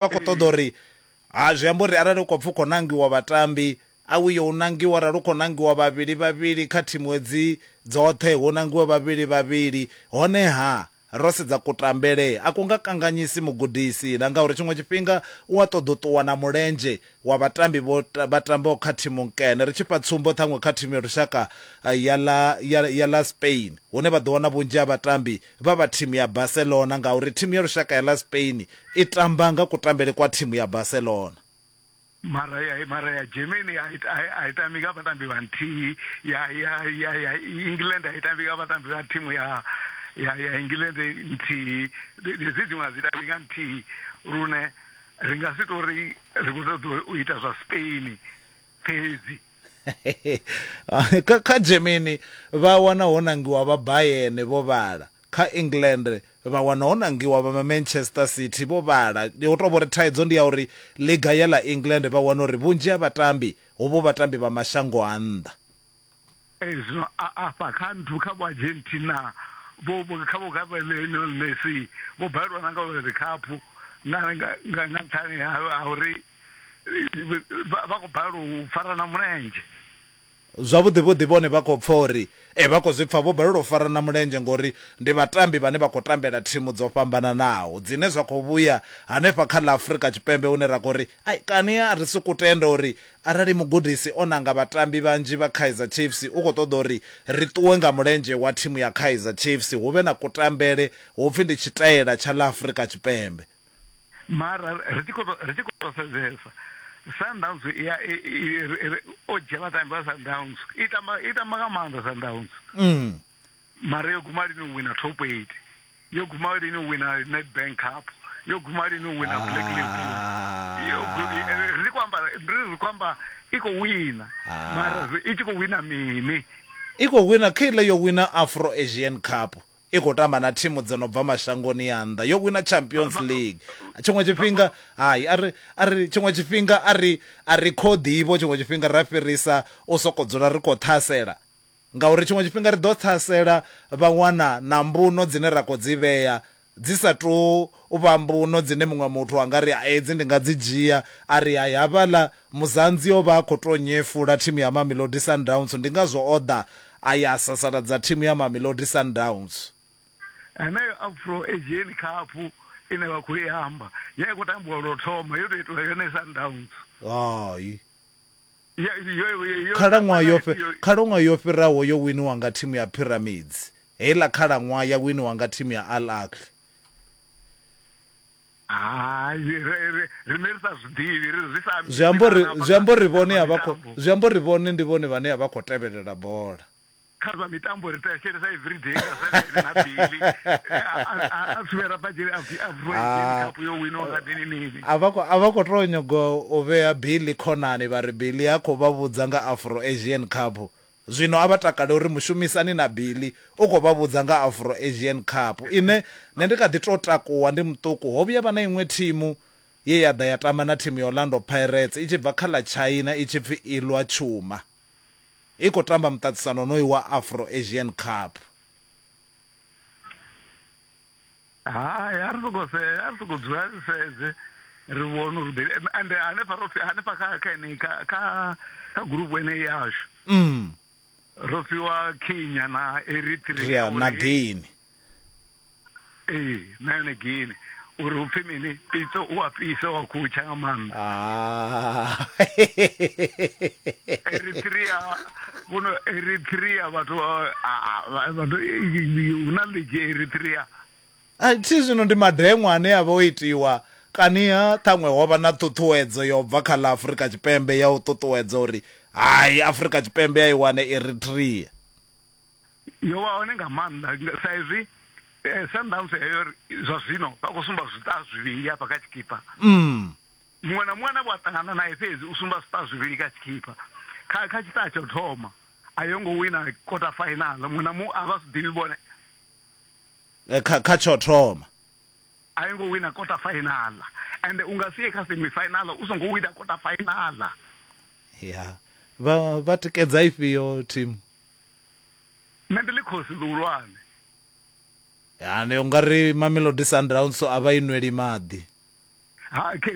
vha khou ṱoḓa uri ha zwi amba uri arali u khou pfha u khou nangiwa vhatambi a u yo u nangiwa arali u khou nangiwa vhavhili vhavhili kha thimu hedzi dzoṱhe hu nangiwe vhavhili vhavhili honeha ro sedza kutambele a ku nga kanganyisi mugudisi na ngauri tshiṅwe tshifhinga u a ṱoḓa u ṱuwa na mulenzhe wa vhatambi vho vha tambaho kha thimu nkene ri tshi fha tsumbo ṱhaṅwe kha thimu ya lushaka eh, ya ḽa ya, ya ḽa Spain hune vha ḓo wana vhunzhi ha vhatambi vha vha thimu ya Barcelona ngauri thimu ya lushaka ya ḽa Spain i tamba nga kutambele kwa thimu ya Barcelona. Mara ya mara ya Germany a i- a i- a i tambi nga vhatambi vha nthihi ya ya ya ya England a i tambi nga vhatambi vha thimu ya ya ya England nthihi Ndi- ndi dzi dziṅwe a dzi tambi nga nthihi lune ri nga si tori ri khou ṱoḓa u ita zwa Spain Fhedzi. Kha Germany vha wana ho nangiwa vha Bayern vho vhala. Kha England vha wana ho nangiwa vha Manchester City vho vhala. Ho tou vhori thaidzo ndi ya uri ḽiga ya ḽa England vha wana uri vhunzhi ha vhatambi hovho vhatambi vha mashango a nnḓa. Ezwo a afha kha nthu kha vho Argentina vho vho kha vho kha Lionel Messi vho balelwa na nga World Cup nga nga nga nga nṱhani ha ha uri vha vha khou balelwa u farana mulenzhe. Zwavhuḓi vhuḓi vhone vha khou pfa uri ee vha khou zwi pfa vho balelwa u farana mulenzhe ngori ndi vhatambi vhane vha khou tambela thimu dzo fhambananaho dzine zwa khou vhuya hanefha kha ḽa Afrika Tshipembe hune ra khou ri ai kani a ri sokou tenda uri Arali mugudisi o nanga vhatambi vhanzhi vha Kaizer Chiefs, u khou ṱoḓa uri ri ṱuwe nga mulenzhe wa thimu ya Kaizer Chiefs, hu vhe na kutambele hu pfi ndi tshitaela tsha ḽa Afrika Tshipembe. Mara ri tshi khou tou, ri tshi khou tou sedzesa, Sundowns i ya, i, i, ri, ri, o dzhia vhatambi vha Sundowns, i tamba, i tamba nga maanḓa Sundowns. mara yo guma lini u wina top 8 yo guma lini u wina nedbank cup yo guma lini u wina black label Ah. Yo gu- eh, eh, ri khou amba ri ri khou amba i khou wina Ah. mara zwi- i tshi khou wina mini i khou wina kha iḽa yo wina afro asian cup i khou tamba na thimu dzo no bva mashangoni a nnḓa yo wina champions league tshiṅwe tshifhinga hai a ri a ri tshiṅwe tshifhinga a ri a ri khoḓivho tshiṅwe tshifhinga ra fhirisa u sokou dzula ri khou ṱhasela Ngauri tshiṅwe tshifhinga ri ḓo ṱhasela vha wana na mbuno dzine ra khou dzi vhea dzi sa tou vha mbuno dzine muṅwe muthu a nga ri, Hai, hedzi ndi nga dzi dzhia. A ri, Hai, havhaḽa Muzanzi o vha a khou tou nyefula thimu ya Mamelodi Sundowns, ndi ngazwo o ḓa a ya a sasaladza thimu ya Mamelodi Sundowns. Heneyo Afro Asian Cup ine vha khou i amba, ya i khou tambiwa lwo thoma, yo tou itelwa yone Sundowns. Hai, Khalaṅwaha yo Khalaṅwaha yo fhiraho yo winiwa nga thimu ya Pyramids. Heiḽa khalaṅwaha ya winiwa nga thimu ya Al Ahly. Hai, riṋe ri sa zwi ḓivhi, ri zwi sa ambi. Zwi amba uri, zwi amba uri vhone a vha khou, zwi amba uri vhone ndi vhone vhane a vha khou tevhelela bola. kha zwa mitambo ri thetshelesa everyday nga saturday na bili a tsuvhera badzhele a ah. cup yo wino nga dini nini a vha khou tou nyago u vhea bili khonani vha ri bili a khou vha vhudza nga afro asian cup zwino a vha takale uri mushumisani na bili u khou vha vhudza nga afro asian cup ine nṋe ndi kha ḓi tou takuwa ndi muṱuku ho vhuya vha na iṅwe thimu ye ya ḓa ya tamba na thimu ya orlando pirates i tshi bva kha ḽa china i tshi pfi ilwa tshuma i khou tamba muṱaṱisano wonoyu wa Afro Asian Cup. Hai, a ri soko se a ri soko dzula ri sedze ri vhone uri ḓe ende hanefha ro hanefha kha kha ene kha kha kha group ene yashu mm ro fhiwa Kenya na Eritrea na Guinea ee na yone gini uri upfi mini pitso u a fhisa wa khutsha nga maanḓa ah. eritrea kuno eritrea vhathu vhathu hu na ligi eritrea a thi zwino ndi madeṅwa ane a vha o itiwa kaniha ṱhaṅwe ho vha na ṱhuṱhuwedzo yo bva kha ḽa afurika tshipembe ya u ṱuṱuwedza uri hai afurika tshipembe ya i wane eritrea yo vha hone nga maanḓa sa izwi eh, sundance heyo zwa zwino vha khou sumba zwiṱa zwivhili hafha kha tshikipa mm. muṅwe na muṅwe ane vha ṱangana naye fhedzi u sumba zwiṱa zwivhili kha tshikipa kha kha tshiṱa tsho thoma a yo ngo wina quarter final muṅwe na muṅwe a vha si ḓivhi vhone eh, kha kha tsho thoma a yo ngo wina quarter final and u nga sie kha semi final u songo wina quarter final ya vha vha tikedza ifhio team Nṋe ndi ḽikhosi ḽihulwane. Ane u nga ri Mamelodi Sundowns a vha i nweli maḓi.